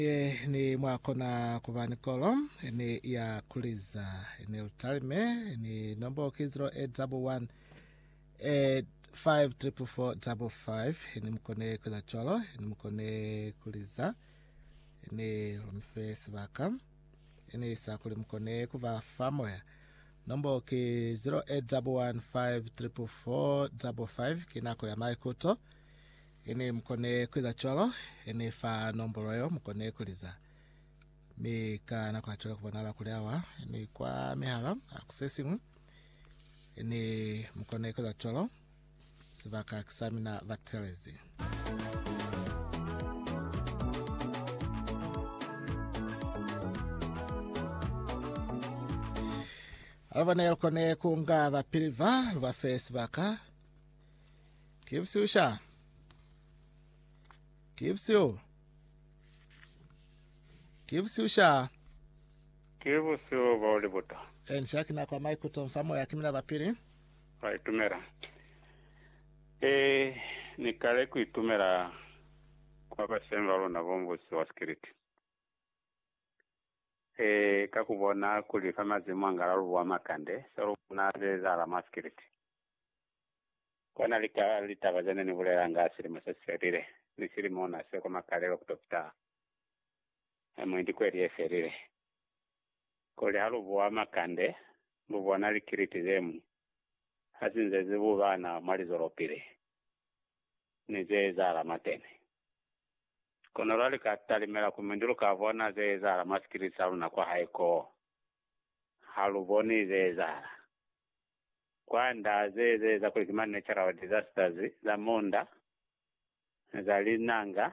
Ye ni mwa kona ku ba ni kolo ni ya kuliza ni lutalime ni nombo ki 0811 eh, 5445 ni mukone kuza cwalo ni mukone kuliza ni lumife sibaka ni sa kuli mukone kuba fa moya nombo ki 0811 5445 ki nako ya maikuto Hene mukone kueza cwalo, hene fa nombolo yeo mukone kuliza. Mi ka nako hacwale kubonahala kuli awa ni kwa mihala a ku sesiñwi. Hene mukone kueza cwalo, sibaka ki sa mina ba telezi. Alubone lukone kunga bapili va, lubafe sibaka, Gives you sha. Gives you. Gives you sha. Ke bosio bao le bota. And sha kina kwa maikuto mfa moya kimina bapili. Ba itumela. Eh, ni kale ku itumela kwa bashemi ba luna bo mbusi wa sikiliti. Eh, ka ku bona kuli fa mazimu angala lubu wa makande, sa lu bona ze zahala mwa sikiliti. Kona lika litaba zene ni bulelanga silimo se sifelile, ni silimo na seko makalelo kuto fita mwi ni kweli ye felile. Kuli ha lu buwa makande, lu bona likiliti zemwi hasi nze zi bubana mwa lizolopili ni ze ezahala mwateni. Kono lwa lika talimela ku mindu lu ka bona ze ezahala mwa sikiliti sa luna kwa hae koo. Ha lu boni ze ezahala. Kwand'a ze ezeza kuli ki ma natural disasters za munda, za linanga,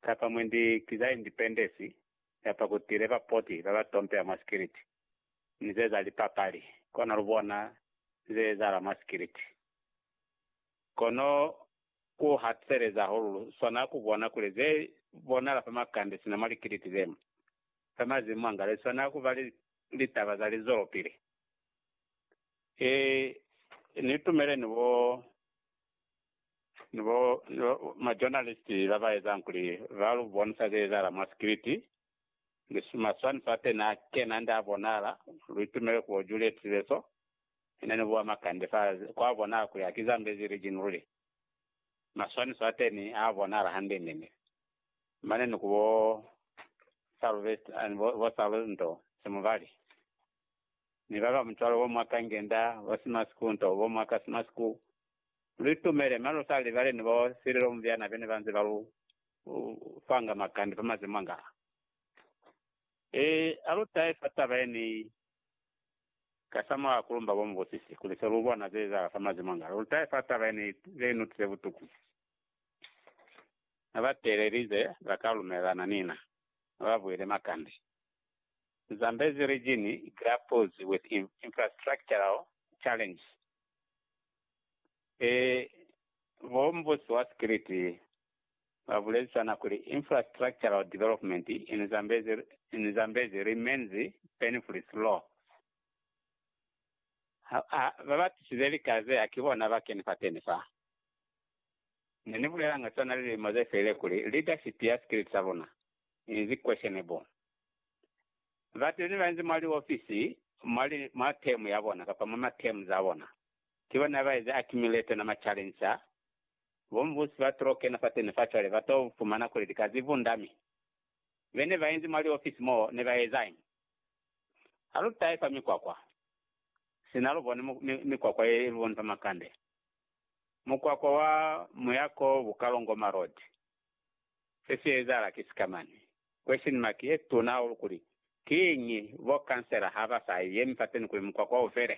kapa mwe ndi ki za independence, kapa ku tile ba poti ba ba tompeha mwa sikiliti, ni ze za lipapali, kono lu bona ze ezahala mwa sikiliti. Kono ku hatuseleza hahulu lu swana ku bona kuli ze bonahala fa makande sina mwa likiliti ze fa mazimu mwa nga li swana ku ba litaba za lizwelopili. E, ni tumele ni bo, ni bo, ni bo ma journalist la ba ezang kuli ba lu bonisa ze ezahala mwa script, ni maswaniso a teni a kena nda a bonahala, lu itumele ku bo Juliet Tibeso, ina ni bua makande fa, kwa bonahala kuli ha ki Zambezi region luli. Maswaniso a teni a bonahala hande nene. Mane ni ku bo Salvest, bo Salvento Semuvali. ni ba ba mutwalo o mwa kangenda o si mwa siku nto bo mwa ka si mwa siku, lu itumele, mane lu sa libale ni bo sililo mubyana be ne ba nze ba lu fanga makande fa maze mwangaa. E, a lu tahe fa taba ye ni kasamulaho ku lumba bo mubusisi kuli se lu bona ze ezahala fa maze mwangaa, lu tahe fa taba ye ni ze ni utwile butuku. Ha ba teelelize, ba ka lumelelana ni na, ha ba buhele makande. Zambezi region grapples with infrastructural challenges ee Bo mbusi wa sikiliti ba bulezisana kuli infrastructural development in Zambezi in Zambezi remains painfully slow ha ha ba batisize lika ze haki bona ba keni fateni fa Ne ni bulelanga sona lilimo ze felile kuli leadership ya sikiliti sa luna inzi questionable. Bateni bainzi mwa liofisi mwali mwa term ya bona kapa mwa ma term za bona, ki bona baezi accumulate ona ma challenge a. Bo Mvusi ba tlo kena fateni fa cwale ba to fumana kuli lika zi vunda mi bene bainzi mwa liofisi moo ne ba ezañi? Ha lu tahe fa mikwakwa, sina lu bone mikwakwa ye lu boni fa makande, mukwakwa wa muya ko Bukalongoma Road Se si ezahala ki sikamani. Question mark ye tuna hahulu kuli, Kiñi bo kansela ha ba sa yemi fateni kuli mukwakwa u fele?